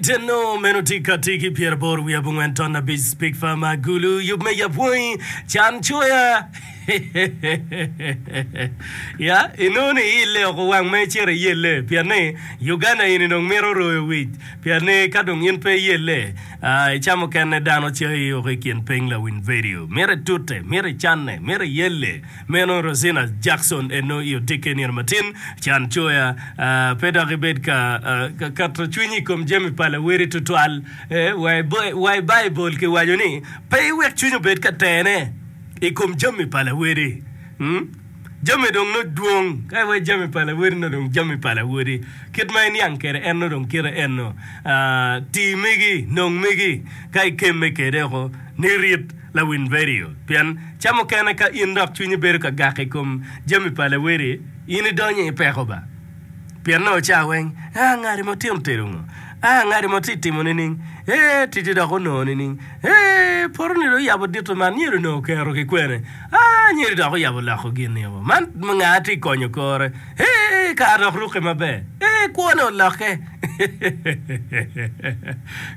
Ceno meno tye kati ki pyer aboro wiye abongwen ton abic Spikfa ma Gulu yub me yapwangi can coya ya inongo ni iile oko wang ma icito iyelle pien ni Uganda eni dong mito royo wic pien ni ka dong in pe iyelle ica mukene dano cayi oko ikin ping lawiny vedio mito itute mito icanne mito iyelle Meno Rosina Jackson eno i odikke nino matin, can coya pe dok ibed ka keto cwinyi i kom jami pa lawoti tutwal. Wa i Baibul kiwaco ni, Pe iwek cwiny obed ka tene i kom jami pa lawoti. Jami dong nongo dwong, ka iwaco jami pa lawoti nongo dong jami pa lawoti. Kit ma iniang kwede en nongo dong kite eno, Ti megi, nong megi, ka ikemme kwede woko, ni rit. Lawiny redio, pien ca mukene ka in dok cwinyi bedo ka gak i kom jami pa lawedi, in idonyo i peko ba. Pien nongo ca weng, aa ngati mo tino tedo ngo, aa ngati mo ti timo nining, ee titi dok onongo nining, ee potoni dong oyabo dito man nyedo onongo kero ki kwene, aa nyedo dok oyabo loko gin niko man, nga ti konyo kore. Ee, ka adok rukke maber. Ee, kwone olokke.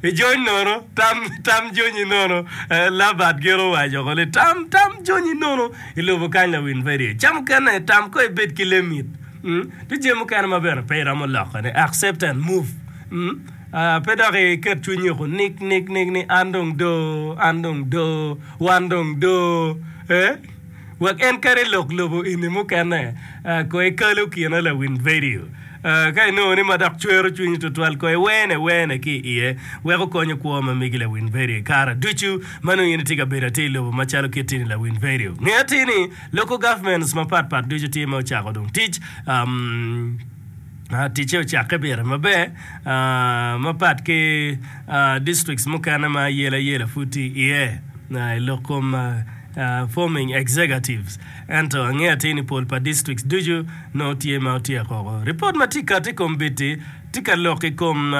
Ijony nono, tam, tam jonyi nono. Labert gire owaco woko ni, Tam, tam jonyi nono i lobo kany lawin pe tye. Ca mukene, tam kong ibed ki lem it. Mm. Tye jami mukene ma bene pe iromo lokone. Accept and move. Mm. Ah, pe dok iket cwinyi woko nik, nik, nik ni an dong doo, an dong doo, wan dong doo. Ee. Wek en kadi lok lobo eni mukene, kono ikalo kine lawiny vidio. Ka inongo ni ma dok cwero cwinyi tutwal, kono iwene wene ki i iye wek okonyo kwo ma megi lawiny vidio. I kare ducu ma nongo in itye ka bedo atir lobo macalo kit in lawiny vidio, nge atir ni local governments mapatpat ducu tye ma ocako dong tic. Ticce ocakke pire maber, mapat ki districts mukene ma ayela yela pud tye iye i lok kom forming executives. Ento angeyo atir ni pol pa districts ducu nongo tye ma otyeko woko. Ripot ma tye ka kati i kombiti tye ka lok i kom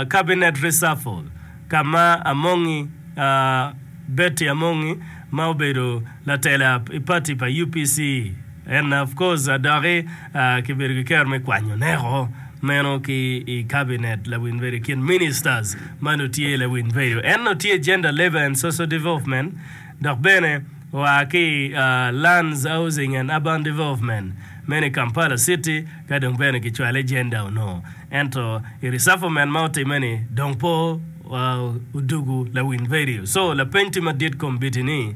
cabinet reshuffle ka ma Amongi, Betty Amongi ma obedo latela i party pa UPC, En of course adoki kibedo ki kero me kwanyo neko meno ki i cabinet lawiny bedo i kin ministers ma nongo tye lawiny bedo. En nongo tye Gender Labour and Social Development dok bene oa ki i Lands Housing and Urban Development meno i Kampala City ka dong bene kicwale Gender onongo ento i reshufflement ma otimme ni dong pe odugu lawiny bedo so lapeny tye madit kombiti ni